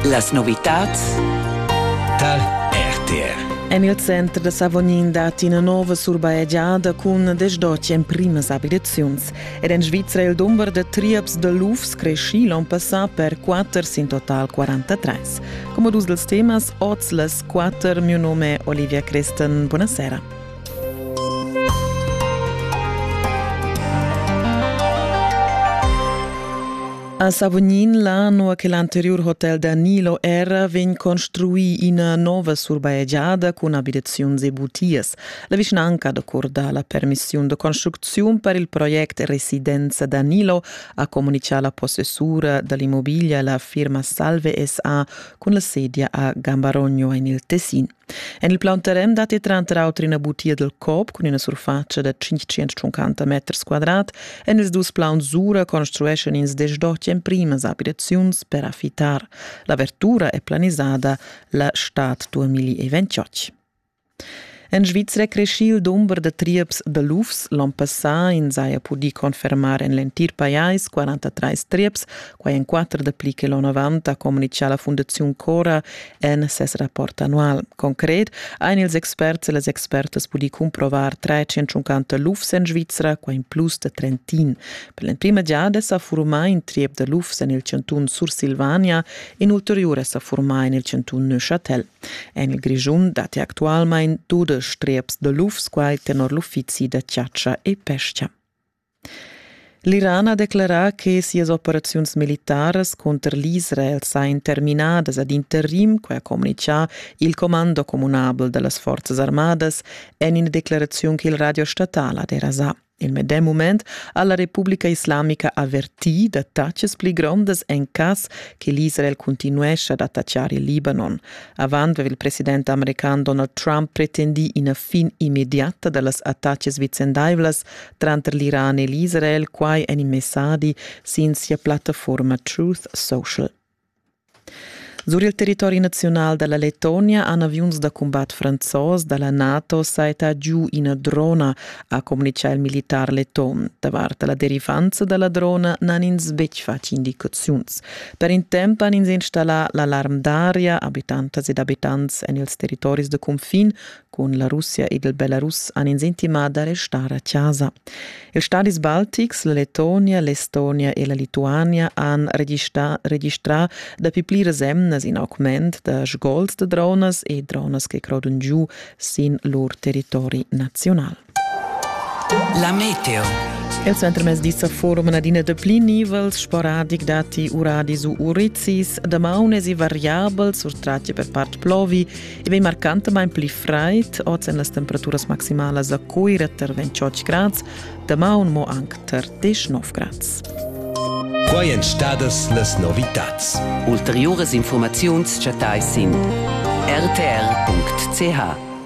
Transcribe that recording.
Las novitads tar RTR. En il center da Savognin dat ina nova surbajegiada cun desdotg emprimas abitaziuns. Er en Svizra il dumber da trieps da lufs creschì l'onn passà per 4 sin total 43. Come dus dels temas, oz les quatter, mio nome Olivia Cresten, buonasera. A Savognin, là nua che l'anteriur hotel da Nilo era, vegn construì ina nova surbaegiada cun abitaziuns e butias. La vischnanca da Curda la permissiun da construcziun per il project Residenza da Nilo ha comunicà la possessura dall'immobiglia la firma Salve SA cun la sedia a Gambarogno en il Tessin. En il plaun terren datti tranter auter ina butia dal COP cun ina surfatscha da 550 meters quadrat. En ils dus plauns Sura construeschan ins desdotg emprimas abitaziuns per affitar. L'avertura è planisada la stad 2028. En Svizra è creschì il dumber da trieps da lufs. L'onn passà ins haja pudì confermar en l'entir pajais 43 trieps, quai en quatter dapli che l'onn avant, ha communitgà la Fundaziun Cora en ses rapport annual. Concret ein ils experts e las expertas pudi cumprovar 350 lufs en Svizra, qua in plus de Trentin. Per l'emprima giada sa formà in triep de lufs en il cantun Sursilvania, in ulteriore sa formà en il cantun Neuchâtel. En il Grischun dati actualmein dudesch trieps de lufs, quai tenor l'uffizi da chiaccia e pesca. L'Iran ha declerà che sias operaziuns militaras cunter l'Israel sajan terminadas ad interim, quai ha communitgà il commando communabel da las forzas armadas en ina declaraziun che il radio statal ha derasà. Il medem mument ha la Repubblica Islamica avvertì da taxas pli grondas en cas che l'Israel continuescha ad attacciare il Libanon. Avant aveva il president american Donald Trump pretendì ina fin immediata da las attacas vicendaivlas tranter l'Iran e l'Israel quai en in messadi sin sia plattafuorma Truth Social. Sur il territori nazional dalla Lettonia han aviuns da combat franzos dalla NATO saita giu ina drona, ha communicà il militar letton. Davart la derivanza dalla drona n'han ins betg fatg indicaziuns. Per in temp han ins installà l'alarm d'aria, abitantas ed abitants en ils territoris de confin, Cun la Russia ed il Belarus han ins intimà da restar a chasa. Ils stadis baltics, la Letonia, l'Estonia e la Lituania han registrà, registrà dapi pliras emnas in augment da sgols da dronas e dronas che crodon giu sin lur territori naziunal. La meteo. Il centrmezdi sa forum adina de pli nivels sporadic dati uradis u urizis, damaunes e variabels surtrati per part plovi e vei marcantamain pli fraid, oz en las temperaturas maximalas a Cuira ter 28 grads, damaun mo anc ter 19 grads. Quai èn stadas las novitads. Ulteriuras informaziuns chattais sin rtr.ch.